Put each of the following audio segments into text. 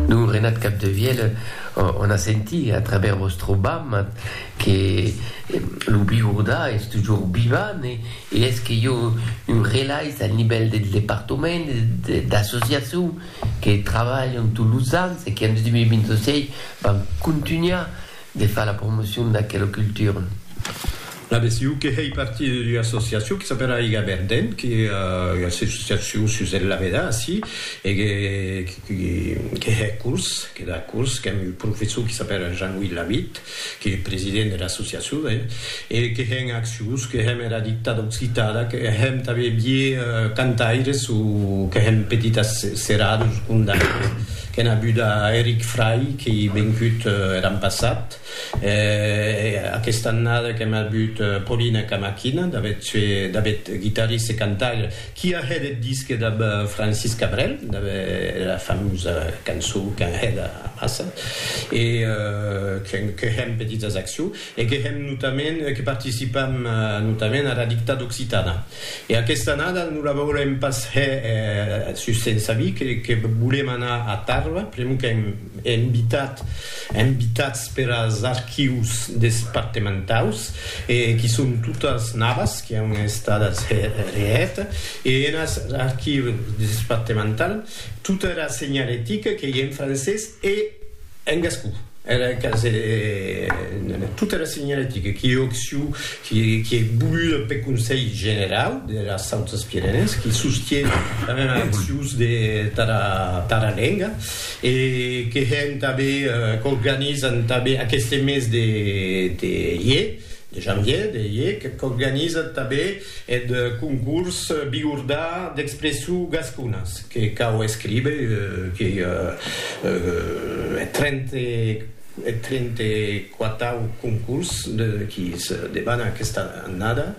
Lo Renat Capdevièlh o n'a senti a traver vòstre bama que lo Biurdà es tujor vivant e es que jo un relais al nivèl del departament d'associacion que travalhan tot los ans e que en 2026 van contunhar De far la promocion d'aquela cultura. La BCU que hèi partir d'ua associacion que s'apèla Aiga Verdent, que ua associacion sus eth Lavedà, ací, e que hè curs, que da curs, qu'èm un professor que s'apèla Jean-Louis Lavitte, qu'ei eth president dera associacion, ben, e que hèn accions, que hèm era dictada occitana, que hèm tanben vier cantaires o que hèm petitas seradas o condaires. Qu'en abuda Eric Fray qu'ei vencut er an passat, e aquesta annada qu'en abut Paulina Camaquina, d'avet sue d'avet guitarriste e cantaire, qui a hèt eth disque dab Francis Cabrel, dab era famosa cançó qu'an hèt amassa, e que hèm petits as accion. e que hèm notament que participam notament ara dictada occitana e aquesta annada non la vòlem pas hè sus sensa vi que volem anar a Tàrrava pr'amor qu'èm invitat invitats per as archius despartementaus e qui son totas navas qui an estadas hè hèt e enas archius despartemental tota era senhalética qu'ei en francés e En gascon, era casa de tota era senhaletica qui ei occiu, qui ei voluda peth Conselh Generau deras Sautas Pirenèes, qui sostie tanben accions tara lenga e que hèn tanben, qu'organizan tanben aqueste mes de ier, de janvier, de ier, qu'organizan tanben Eth concurs Bigordà d'expression gasconas que cau escríber que eth trente quatau concurs qui se debana aquesta annada,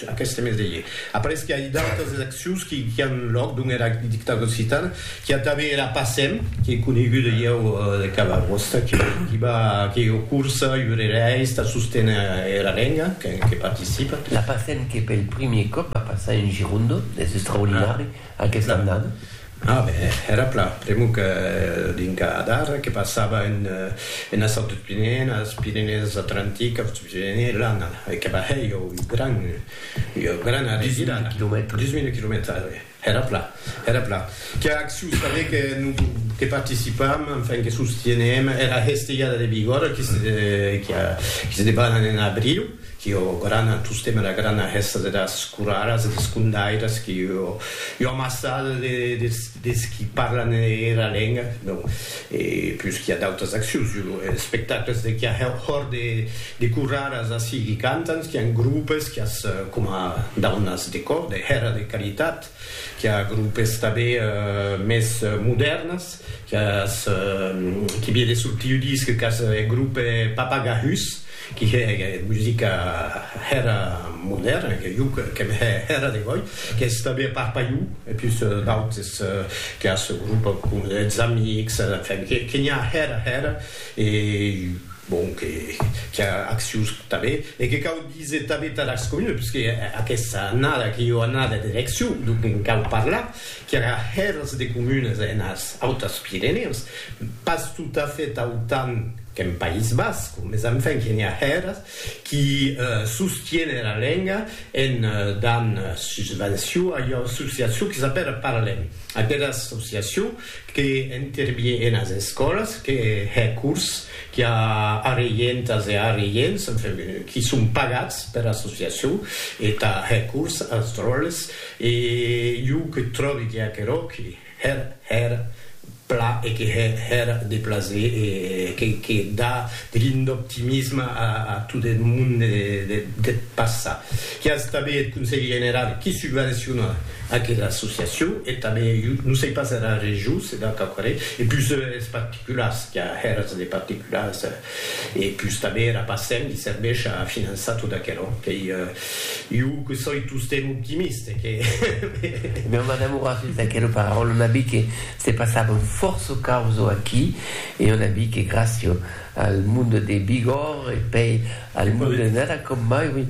aqueste mes de ier. Après que ai d'autas eleccions qui an lòc dont era dictadura occitana, Qu'i a tanben era Passem, qu'ei coneguda ieu de cada costat, que diba que ieu cursa, iurereis, tà sosténer era lenga, que participa. La Passem que pel primier còp va passar en Girondo, es extraordinari aquesta annada. A ben, era plan, pr'amor que dinca d'ara que passava enes autres Pirenèes, Pirenèes Atlantiques, Autres Pirenèes, l'annada, e que va hèr ieu un gran, ieu gran arrevirada. Dix mila quilomètres. Dix mila quilomètres, a ben. Era plan, era plan. Qu'a acciu saber que non que participam, enfin que sostienem era hestejada de Bigòrra qui se qui a qui se debanan en abriu, qui o grana tostem era grana hesta deras coraras e des condairas qui o ua massada de des qui parlan era lenga, donc E pus qu'i a d'autras accions jo lo espectacles de qu'i a hòr de de curraras ací qu'i cantan qu'i an grupes qu'i as coma daunas de cò de hèra de caritat qu'i a grupes tabé mès modèrnas qu'i as qu'i vire sul tiu disc qu'as e grupe papagahus qui hè musica hèra modèrna, que jo qu'èm hè hèra de gòi, qu'es tanben a part Paiu e pus d'autes que a sò grup com es Amics, enfin, que n'i a hèra hèra e bon, que qu'i a accius tanben e que cau díser tanben Tarascon Union, puisque aquesta annada que jo anada d'eleccion, donc en cau parlar. qu'era hèrs de comunes enes Autas Pirenèus, pas tot a fait autant qu'en País Basc, mes enfin que n'i a hèrs qui sostiene era lenga en dan susvenció a ua associacion que s'apèra Parlem, aquera associacion que intervie enes escòlas, que hè cors qui a arreientas e arreients, enfin, qui son pagats pera associacion e tà hè cors as dròlles. E jo que tròbi que aquerò que hèr hèr pla e que hè hèr de plaser e que que da de lin d'optimisme a a tot eth monde de deth passat. Qu'i as tanben eth Conselh Generau qui subvenciona aquera associacion e tanben jo non sei pas era Region se da quauquarren e pus es particulars qu'i a hèrs de particulars. E pus tanben era PASEM li serveish a finançar tot aquerò qu'ei iu que soi tostemp optimist e que Meu madame aurà sut d'aquera paraula, on a vist que se passavan fòrça causo aquí e on a vist que gràcia al monde de Bigòrre e pei al monde de Nara com mai, oui,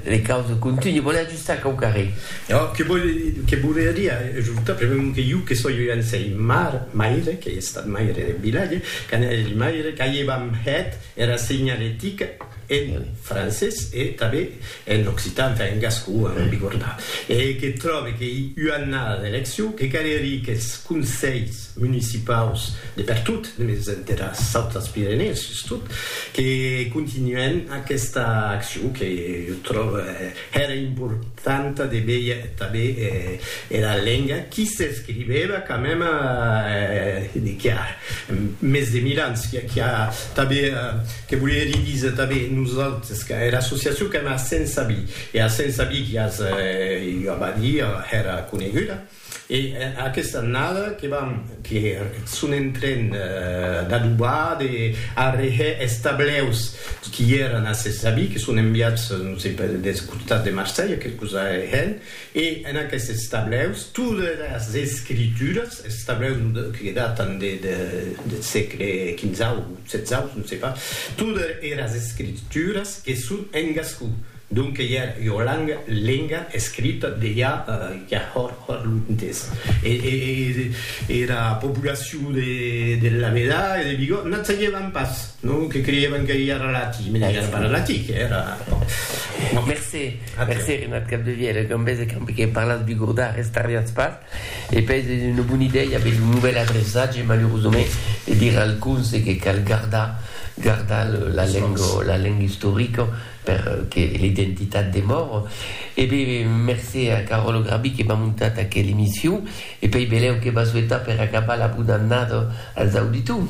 les causes continuent. ça qu'au carré. Ò, que vòl, que volia dire ajortar, pr'amor que jo que soi un sei mar, maire, qu'ei estat maire deth vilatge, quand eri maire, qu'aievam hèt era senhalética en francés e tanben en occitan, enfin en gascon, ara non bigordar, e que tròbe qu'ei ua annada d'eleccion, que calerie qu'es conselhs municipaus de pertot, mès dera Saut des Pyrénées sustot, que continuèn aquesta accion que jo tròbe, Hèra importanta de veir tanben era lenga qui s'escrivèva quand mème de qu'i a mès de mil ans, qui a tanben, que volie li díser tanben nosautres, que era associacion qu'èm a Saint-Saby, e a Saint-Saby qui as ua badièr hèra coneguda. E aquesta annada que vam que son en tren d'adobar, de arrehè es tableus qui èran a ses avis, que son enviats, non sei pas, deth costat de Marselha, quelque cosa arrehèn, e en aquestes tableus tot er as escrituras, es tableus que datan de deth sègle quinzau, setzau, non sei pas, tot er as escrituras que son en gascon. Donque ja ua langa, lenga, escrita de ja ja hòr hòr luntès. E era populacion de de Lameda e de Bigòt n'ac sagevan pas, non? Que creievan que ja era latin, mès ja era pas latin, que era, bon. Mercé, mercé, Renat Capdevièlh, e com vèse qu'ambe que parlatz bigordà restarriatz pas. E pes es una bona idèia aver lo novèl adreçatge, malurosament, e dire al conse que cal gardar, gardar la lenga, la lenga istorica per que l'identitat demore. E be, mercé a Caròlo Grabí que m'a montat aquela emission, e pei belèu que va souetar per acabar la bona annada als auditors.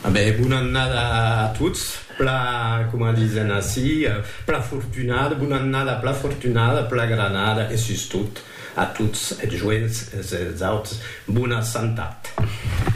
A be, bona annada a tots, pla, coma disen ací, pla fortunada, bona annada pla fortunada, pla granada e sustot. A tots es joents, es auts, bona santat.